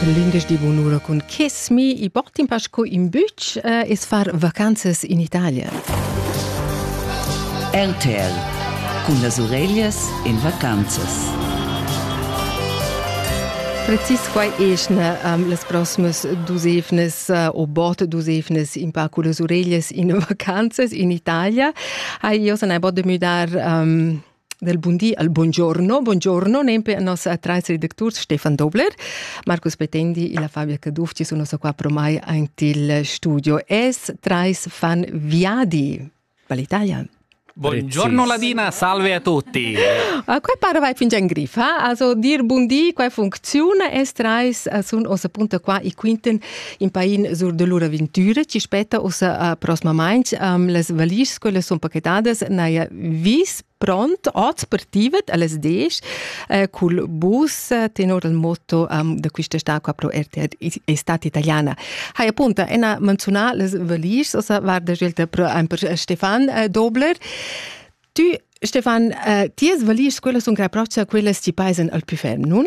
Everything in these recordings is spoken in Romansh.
L'indesch di bunura cun Kiss Me i portin pasco in bütsch eh, es far vacanzas in Italia. RTL cun las ureglias in vacanzas. Precis quai eschna um, las prossimas dusevnas uh, o bot dusevnas in pa con las ureglias in vacanzas in Italia. Hai io san hai bod de müdar um, del bun di al buongiorno, buongiorno nempe a nossa atrais redacturs Stefan Dobler, Marcus Petendi e la Fabia Caduff ci sono qua pro mai antil studio. Es trais fan viadi. Valitaia. Buongiorno Ladina, salve a tutti. A que para vai fingian grifa, also dir bundi, quai funziona, es trais sun ossa punta qua e quinten in pain sur de lur avventura ci spetta ussa a prosmamainch um, las valisch scolas son paquetadas naia vis pront oz per tivet alles 10 eh, cul bus eh, tenor il motto um, da quista stacca pro RTR estate italiana. Hai appunta ena menzionà les valisch ossa varda scelta pro per Stefan eh, Dobler. Tu Stefan, eh, ties valisch scolas sun graproccia quellas ci paisen al più ferm, nun?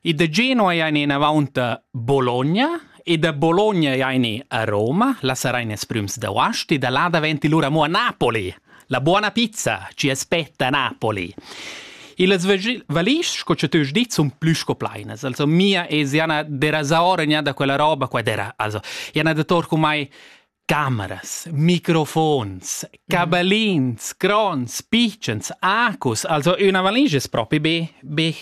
E da Genua ein enavonta Bologna e da Bologna ein a Roma, la sarein ils prüms d'Aost e da là daventi lura mo a Napoli. La buona pizza ci aspetta a Napoli. E las valisch, sco che tu hai dit, sono più scoplainas. Also, mia è Jana derasa ora da quella roba qua dera. Also, Jana da Torco mai cameras, microfons, caballins, crons, pitchens, acus. Also, una valigia è proprio be, be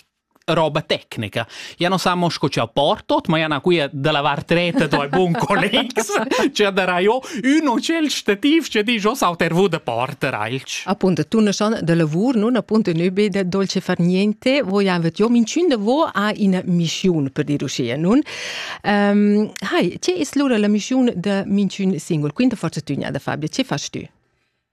roba tecnica. Ja non sa mo sco ci ha portot, ma ja na quia da lavar treta do bun collegs, ci darà io ün o cel stativ ci di jo sauter vu da porter alch. Appunto, tu ne son de lavur, non appunto nebe de dolce far niente, voi avet io minciun de vo a in mischiun per dir uscia, nun? Um, hai, ce es lura la mischiun de minciun singul? Quinta forza tügna da Fabio, ce fas tu?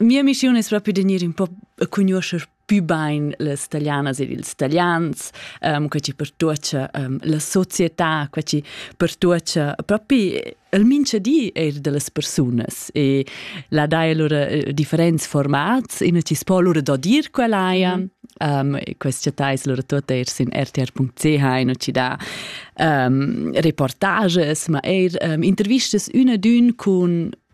Mia missiun es propi da gnir ün po a cugnuoscher pü bain las talianas ed ils talians, um, quai chi pertuocha um, la società, quai chi pertuocha propi il minchadi eir da las persunas e là daja lura eh, differents formats, ina chi's po lura dodir quella haja. Mm -hmm. Um, questa città es lura tuota eir sin rtr.ch in ci dà um, reportages, ma eir um, intervistas üna d'ün cun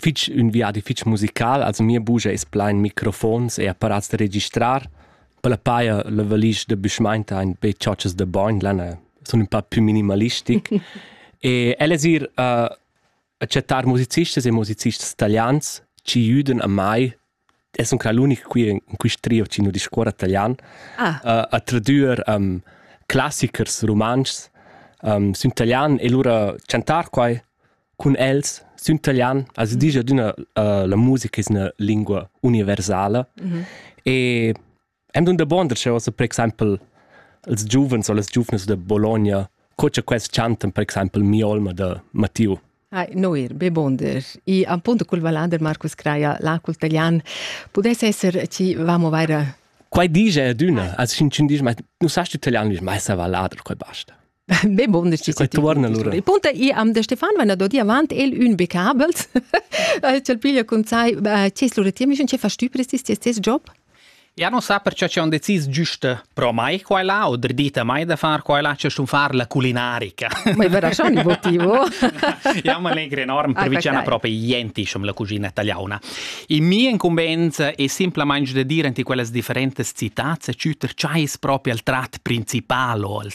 fich ün viadi fich musical, also mia bugia es plain microfons e apparats da registrar. Per la paja la valisch da büschmainta ein be chotschas da bogn, l'ana sun ün pa più minimalistic. e ella es ir uh, a chattar musicistas e musicistas italians chi jüdan a mai e sun qua l'unic qui in quist trio chi nu discuorra talian. Ah. Uh, a tradüer um, classichers rumantschs um, sün talian e lura chantar quai cun els sün talian as disch adüna uh, la musica es üna lingua universala mm -hmm. e Am dun dabuonder ch'eu sa per exaimpel ils giuvens o las giuvnas da Bologna, co cha quels chantan per exaimpel Mia olma da Mattiu. Hai, Noir, be bonder. I appunto cul vallader Marcus Craia, l'Acul Talian, pudess esser chi vamo vaira Quai dice adüna, als cin cin dice, ma nu sast italian, dice, ma essa vallader, quai basta. Be bun, Il punto è am de Stefan, wenn er dodi avant el un becabels, cel piglia con sai, ce sluretiam, ich ce verstübres ist tes job? Ja non sa perciò c'è un decis giusta pro mai qua là o dredita mai da far qua là c'è un far la culinarica. Ma è vero un motivo? Ja ma legre enorm per vicina proprio niente diciamo la cucina italiana. In mia incumbenza è semplicemente da dire in quelle differenti città c'è ciuter c'è proprio il trat principale o il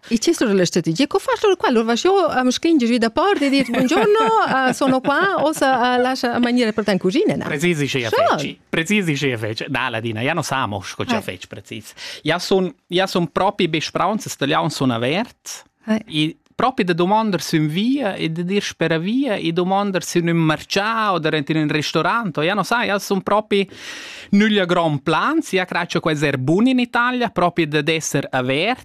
Il chestur della strategia, co far lur qua? Lur va io am scringe giù da porta e dir buongiorno, uh, sono qua, osa uh, lascia mangiare per te in cucina. No? Precisi ce feci. Precisi ce feci. Na, Ladina, ja non samo, co ce feci precis. Ja son, ja son propri besprauns, stagliaun son avert. E proprio da domandar su in via e da dir spera via e domandar su in un marcià o da in un ristorante. Ja non sa, ja son proprio nugli a gran plan, sia craccia quasi er bun in Italia, proprio da d'esser avert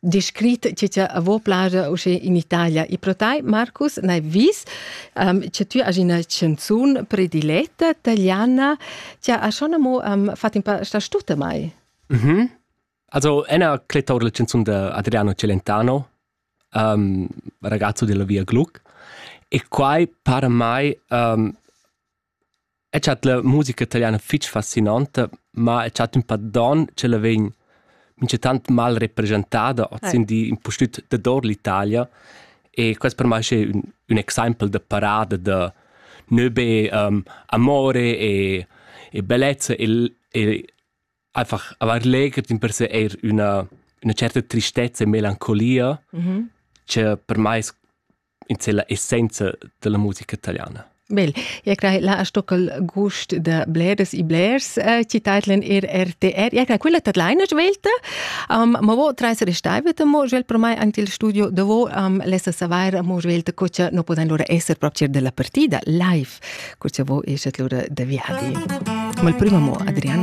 descrit che ti avo plage usche in Italia. E pro tai, Marcus, n'hai vis um, che tu hai una chanzun prediletta italiana. Ti ha schon amo um, fatto un paar sta stuta mai? Mhm. Also, ena cletta la chanzun da Adriano Celentano, um, ragazzo della Via Gluck. E quai para mai um, El chat la musica italiana fich fascinanta, ma el chat ün pa don ch'ella vegn minchatant mal represchentada hoz in di impustüt dador l'Italia e quest per mai schi ün ün exaimpel da parada da nö be amore e e bellezza e e einfach avair legher dimpersè eir üna üna certa tristezza e melancolia, cha per mai es in sella essenza della musica italiana. Bel, ja crai la stockel gust da bleres i blers äh, ci titlen er RTR. Ja crai quella tat leina svelta. Um, ma vo treis restaiveta mo svel per mai anche il studio davo um, lessa savair mo svelta co cha no podan lura esser proprio della partita live, co cha vo esat lura da viadi. Ma il primo mo Adriano